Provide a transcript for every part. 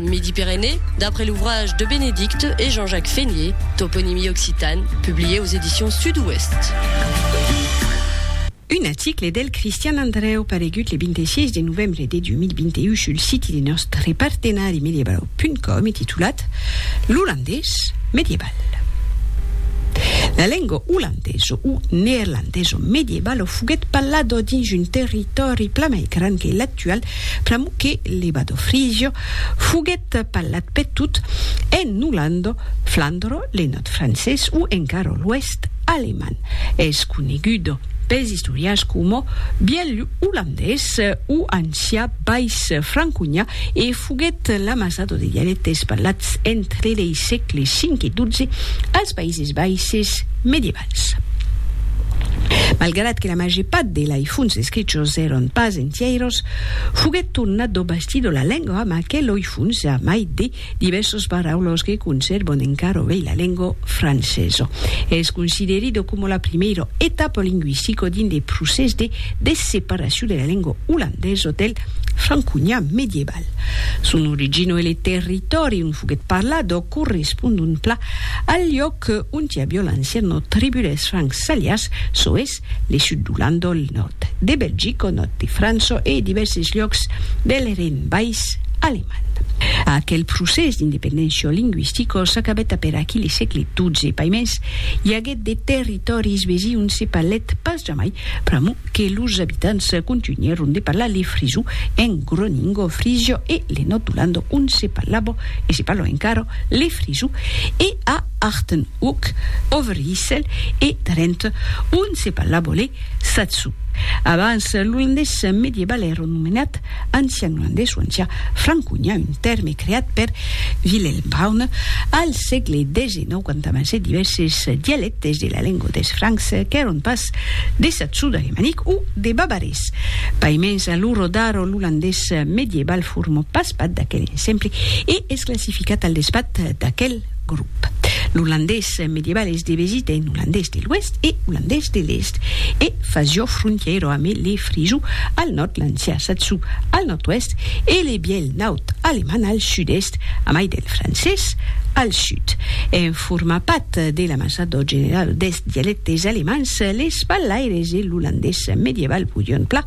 Midi-Pyrénées, d'après l'ouvrage de Bénédicte et Jean-Jacques Fénié, Toponymie occitane, publié aux éditions Sud-Ouest. Un article del Cristian Andreu paregut le 26 de novembre de 2021 sul siti de nòstre partenari mediebau.com e titulat L'olandés medieval. La lenga olandesa o neerlandesa mediebala foguèt parlada dins un territòri plan mai grand que actual Plamu que Lebado Frigio foguèt parlat per tot en Olanda, Flandro, le nòrd francés o encara l'oèst alemand. Es conegut pels istorians coma Bièlh Olandés o ancià Bais Franconha e foguèt l'amassado de dialèctes parlats entre lei sègle 5 e 12 als Païses Baisses medievals. Malgrat que la màger part de lei fonts escrichos èron pas entièiros, foguèt tornat d'ò basti de la lengua amb aquel oi fonts a mai de divèrsos paraulos que consèrvon encara ovei la lengua francesa. Es considerida coma la primièra etapa lingüistica dins de procès de desseparacion de la lengua olandesa del franconian medieval. Val. Son origino e le territòri ont foguèt parlado correspondon pla al liòc ont i avió l'anciano tribu dels Francs Salias, çò es, le sud d'Olanda, el nòrd de Belgica, nòrd de França e divèrses liòcs del Rhin Bais alemand. Aquel procès d'independéncia lingüistica s'acabèt aperaquí le sègle XII, paimens, i aguèt de territòris vesi ont se parlèt pas jamai pr'amor que los abitants contunhèron de parlar le frisó en Groningo, Frisio e le Nordulando ont se parlava, e se parla encara, le frisó, e a Achtenhoek, Overijssel e Drenthe ont se parlava le satsó. Abans, l'olandés medieval èra nomenat ancian olandés o ancian franconhan, un tèrme creat per Willem Browne al sègle xix quand amassèt divèrses dialèctes, des de la lengua des Francs qu'èron pas de saxo-d'alemanic o de bavarés. Paimens a lo rodar l'olandés medieval formò pas pat d'aquel ensemble e es classificat al despat d'aquel grop. L'olandés medieval es devesit en olandés de l'Oèst e olandés de l'Èst e fasió frontièira amé le frisó al nòrd, l'ancià saxo al nòrd-oèst e le bièlh naut alemand al sud-èst, amai del francés al sud. Forma pat de l'amasador general des dialectes alemands, les ballaires e l'olandés medieval podion pla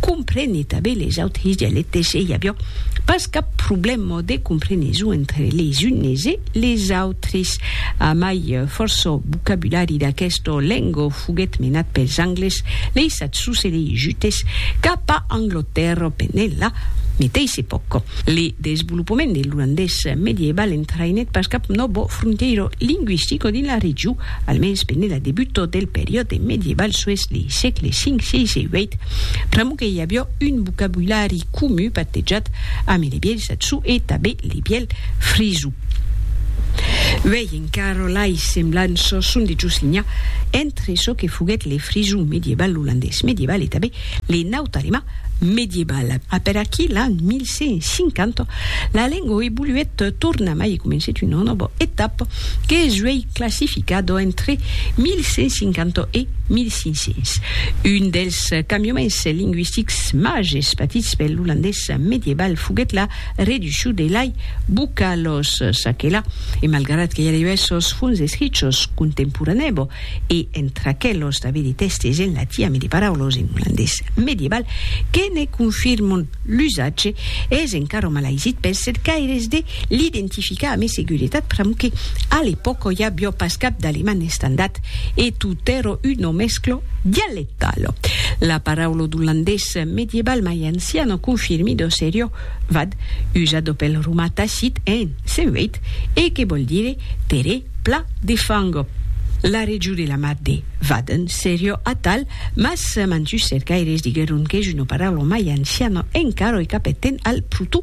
comprene tanben les autres dialectes e i aviá pas cap problèma de compreneson entre les unes e les autres. A mai, fòrça vocabulari d'aquesta lenga foguèt menat pels Angles, leis Eth sucedei Jutes cap a Anglotèrra pendent la meteissa epòca. Le desvolopament de l'olandés medieival entraïnèt pas cap nòvo fronteiro lingüistico dins la region, almens pendent la debuta del periòde medieival sués lei sègles V, VI e VIII, pr'amor que i avió un vocabulari comun patejat ambe le bièlh saxon e tanben le bièlh frisau. Carolai semblant çò son de Josinia, entre çò que foguèt le frison mediebal olandés mediebal e tanben le naut alemand mediebal. A per aquí l'an 1150, la lengo evoluèt tornamai e comencèt una nòva etapa que es uèi classificada entre 1150 e 1500. Un dels cambiaments lingüistics màgers patits per l'olandés mediebal foguèt la Reducho de lai buca los s'aquela, e malgrat que j'arribè sos funs escrichos contemporanèbo, e entre aquelos d'aver de tèstes en latin ame de paraulos en olandés medieval que ne confirmon l'usatge, es encara malaisit pels cercaires de l'identificar ame seguretat pr'amor que, a l'epòca, i avió pas cap d'aleman estandat, e tot èro un o mesclo dialecte. Talo. La paraula d'olandés medieval mai ancian o confirmi d'o serio vad, usado pel romà Tacit en Sen Veit e que vòl dire terrè pla de fango. La region de la mar de Vaden serio atal, mas mantus cercaires diguèron qu'es una paraula mai anciana encara e qu'apperten al protó.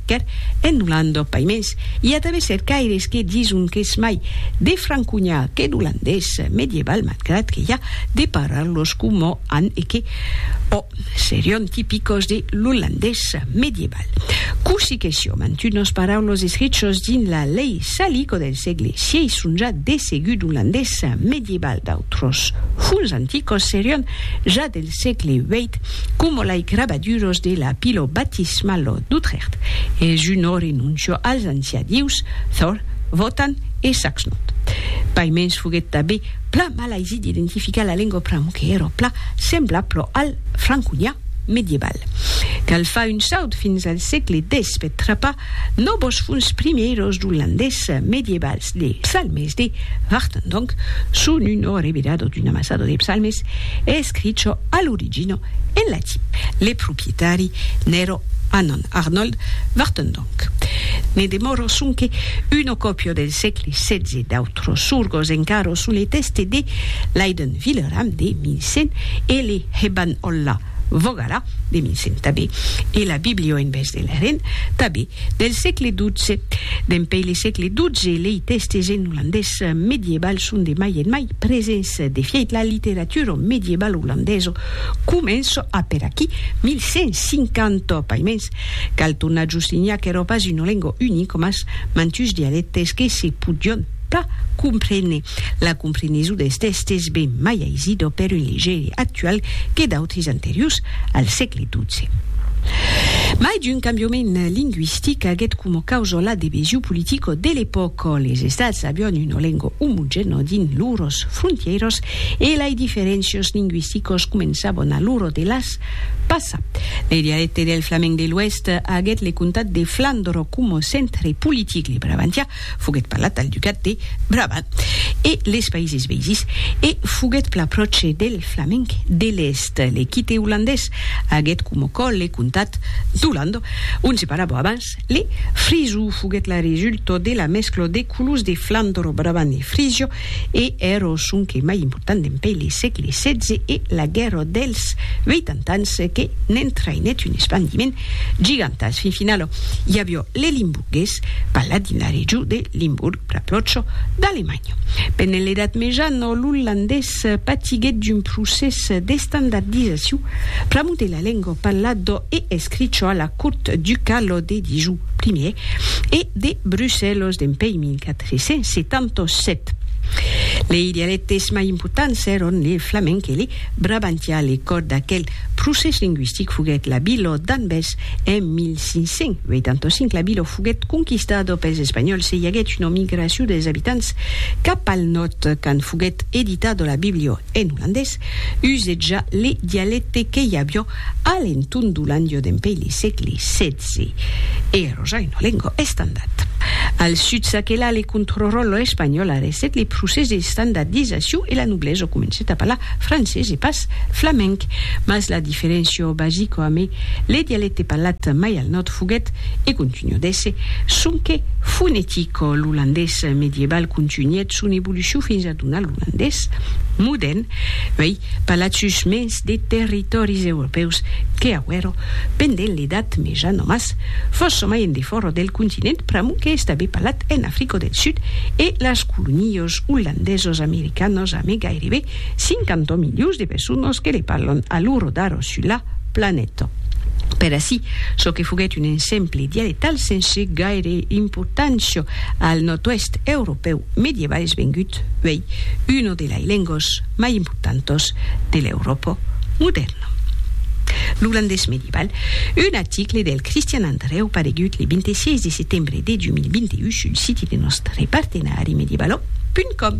Car, en Olanda, paimens, i a tanben cercaires que dison qu'es mai de franconhar que d'olandés medieval, malgrat que i a de parlar-los coma an e que, ò, serion tipicos de l'olandés medieval. Cossí que sió, mantunas paraulas escrichas dins la lei Salico del sègle xvii son ja de segut olandés medieval, d'autros fonts anticos serion ja dels sègle vièit, coma lei crabaduros de la pilo baptismalo d'Utrècht, es un orenoncio als ancià dieus Thor, Wotan e Saxnot. Paimens foguèt tanben plan malaisit d'identificar la lengua pram que èra plan semblablo al franconian medieval. Cal far un saut fins al sègle xix per trapar No vos funs primièros d'olandés medievals de psalmes de Vartan donc son un ò revelado d'un amassado de psalmes escricho a l'origina en latin. Le proprietari n'èra Annan Arnold Vartan donc. Ne demòra sonque una còpia del sègle setze d'autres sorgos encara son le tèste de Leiden Villeram de 1100 e le Heban Olla Vogala de Mincent tanben, e la biblio en bes de Leren, tanben, del sègle dotze. Dempèi le sègle dotze, lei tèstes en olandés medieval son de mai en mai presents, de fièit la literatura medievalo olandesa comença a per aquí 1150, paimens cal tornar a justinhar qu'èra pas una lenga unica mas mantuns dialèctes que se podián pas comprene la compreneson des tèstes ben mai aisida per un legere actual que d'autres anteriors al sègle XII. Mai d'un cambiament lingüistic aguèt coma causa la debesion politica de l'epòca, les Estats avián una lenga omogèna dins lors frontièras e lai diferéncias lingüisticas començavan a lor de las passar. Le dialècte del flamenc de l'Oèst aguèt le comtat de Flandre coma centre politic, le Brabantià Foguèt parlat al ducat de Brabant e les Païses Veïses e foguèt pla pròche del flamenc de l'Èst. L'equite olandés aguèt coma còl le comtat d'Olanda, ont se parlava abans le frisó. Foguèt la resulta de la mescla de colors de Flandre, Brabant e Frisio e èra sonque mai important dempèi le sègle xvi e la Guèrra dels Veitant Ans que n'entraïnèt un espandiment gigantàs. Fin finala, i aviá le Limbourg. Ges, paladin a regiu de Limburg, pr'ath lòco d'Alemanha. Pene l'Edat Meja, nò l'olandés patiguèt d'un procès d'estandardizaciu pr'amor de la lengua parlado e escricho a la cort ducalo de Dijou, primièr, e de Brussèlos dempèi 1477. Lei dialèctes mai importants èron le flamenc e le brabantià, le còr d'aquel Procès lingüistic foguèt la Bilò d'Anvers en 1585. La Bilò foguèt conquistada pels Espanhòls e i aguèt una migracion dels abitants cap al nòrd. Quand foguèt editada la Bibliò en olandés, usèt ja le dialècte que i aviá a l'entorn d'Olandiò dempuèi le sègle xvi e era ja una lenga estandard. Al sud s'aquelà le contrròtle espanhòl, arrestèt le procès d'estandardizacion e la noblesa comencèt a parlar francés e pas parlat flamenc, mas la diferenciò basico amé le dialecte parlat mai al nòrd foguèt, e contunhò d'èsser, sonque fonetico, l'olandés medieval contunhèt son evolucion fins a donar l'olandés modèrn, uèi parlat sus mens de territòris europèus que auèro pendent l'Edat Meja nomas fòrça mai en defòra del continent pr'amont que estabe parlat en Africo del Sud e las colonios olandesos americanos amé gairebe 50 milions de personas que le parlan a l'ora d'ara sus la planeta. Per aicí, çò que foguèt un exemple dialectal sense gaire importància al nòrd-oèst europèu medieval es vengut uèi una de lai lengas mai importantas de l'Euròpa modèrna. L'olandés medieval, un article del Christian Andreu paregut le 26 de setembre de 2021 sul siti de nòstre partenari medievalo. Com.